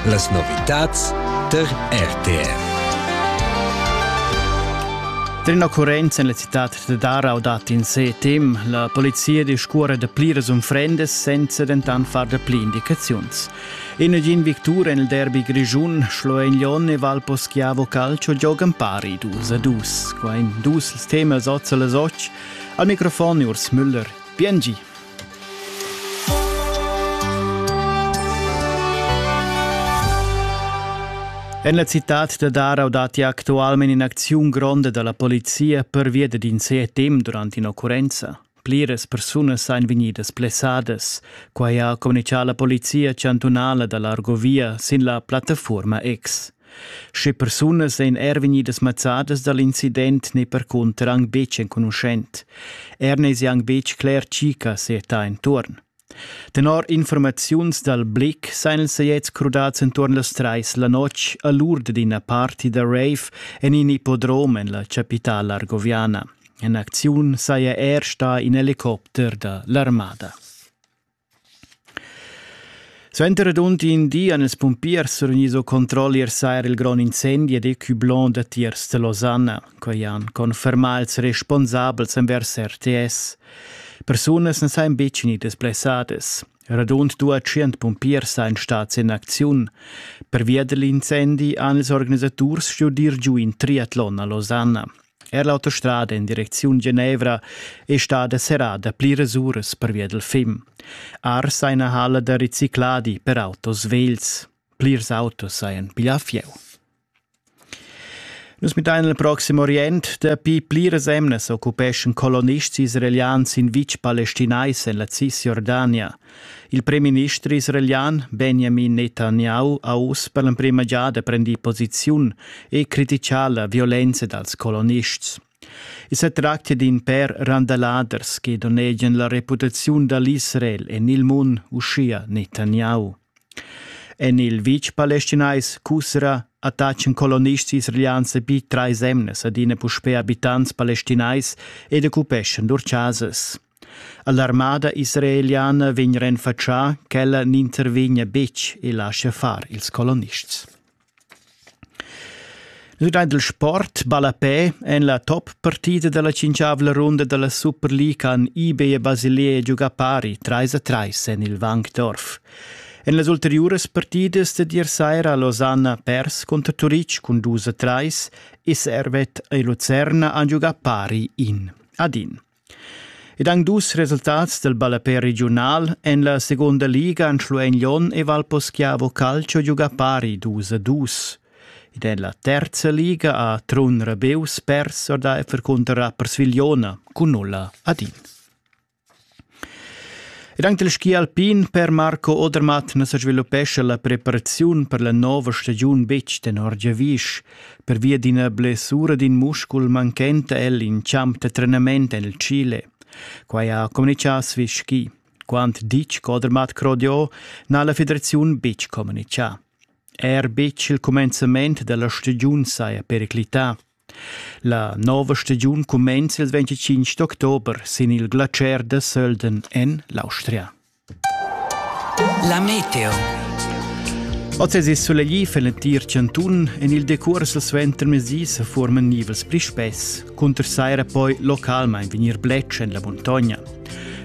Las novitads tar RTR. Trina Currenz en la città da Darau dat in sé tem. La polizia discurre da pliras unfrendas senza dentant far da pli indicaziuns. In gin victur en il derby grischun Schloenlon e Valpo Schiavo Calcio giogan pari dus a dus. Qua in dus il tema sozzal a soc. Al microfon Urs Müller. Bien En la citad da Darau datti actualmente in'acziun gronda dalla polizia pervia d'in CETM durant in'occurrenza. Pliras persunas ein vegnidas plessadas. Quai ha communicà la polizia chantunala da l'Argovia sin la plattafuorma X. Sche persunas ein er vegnidas mazzadas dall'incident ne percunter aunc betg enconuschent. Er ne si aunc betg cler tgi che seta entuorn. Tenor informaziuns dal Blick seien els jetzt crudats entuorn las treis la notg a l'urd d'ina party da rave en in ippodrom en la capitala argoviana. En acziun saja er sta in helicopter da l'armada. Suenter radund in di han ils pumpiers surgnis o controlli ier saira il grond incendi ed ecublon da tiers da Losanna. Quei han confermà ils responsabels envers RTS. Persunas n'han san betg gnidas blessadas. Radund dua tschient pumpiers ein stats in acziun. Pervia dell'incendi han ils organisaturs studiu dir giu in triatlon a Losanna. Er l'autostrada in direcziun Genevra è stada serrada pliras uras pervia dal fim. Ars ha ina halla da ricicladi per autos vegls. Plirs autos hajan piglià fieu. Nus midain il proxim Orient. Dapi pliras emnas occupeschan colonists israelians in vitg palestinais en la Cisjordania. Il premierminister israelian Benjamin Netanyahu ha uss per l'emprima giada prendì posiziun e criticà la violenza dals colonists. I sa tractia d'in pèr randaladers che donnegian la reputaziun da l'Israel en il mund, uschia Netanyahu. En il vitg palestinais Kusra attaccan colonists israelians bi trais emnas adina puspè abitants palestinais ed occupeschan lur chasas. All'armada israeliana vegn renfatschà ch'ella n'intervegnia betg e laschia far ils colonists. Nus giain il sport ballapè en la top partida da la cinquavla runda da la Superliga han eBay e Basilea giugà pari 3 a 3 en il Wankdorf. En las ulteriuras partidas da dir saira Losanna pers conter Turitg cun 2 a 3 e Servet e Lucerna han giugà pari in ad in. Ed han dus resultats dal ballapè regiunal en la segunda liga han Schluein Lyon e Valposchiavo Calcio giugà pari dus a dus. Ed en la terza liga ha Trun Rebeus pers or da Effer cunter Rappers Vigliona cun nulla ad in. Ed anche il ski alpin per Marco Odermatt na sa sviluppescha la preparaziun per la nova stagiun betg tenor giavisch. Pervia d'ina blessura d'in muscul manchenta el in champ da trenament el Chile. Quai ha communitgà Swiss Ski. Quant ditg Codermat Crodiot n'ha la federaziun betg communitgà. Er betg il cumenzament da la stagiun saja periclità. La nova stagiun cumenza il 25 d'october sin il glacier da Sölden en l'Austria. La meteo. Oz è sulegli für l'entir Cantun. En il decurs dal suentermezdi se forman nivels pli spess. Cunter saira poi localmain vegnir bletsch en la muntogna.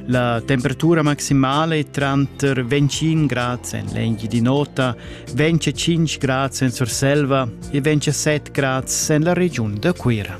La temperatura maximale è tranter 25 gradi en l'enghi di nota, 25 gradi en Surselva e 27 gradi en la regiun da Cuira.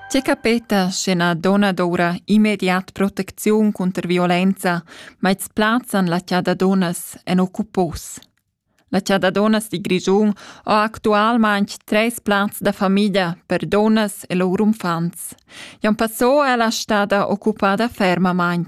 Tge capeta sche na donna doura immediat protecziun cunter violenza, ma its plazzan la chada donnas en occupos? La chada donnas di Grischun ho actualmaing tres plazs da famiglia per donnas e lur unfants. Jan Passò è la stada occupada fermamaing.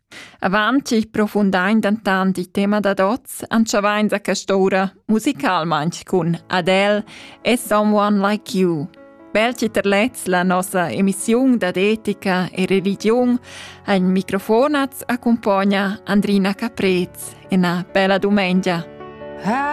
Avant ch'il profundain dentant il tema dad oz, entschavain da quest'ora musicalmain cun Adele e Someone Like You. Bel titerlets la nossa emissiun dad etica e religion ein microfonats accompagna Andrina Caprez e una bella domenica. Ah.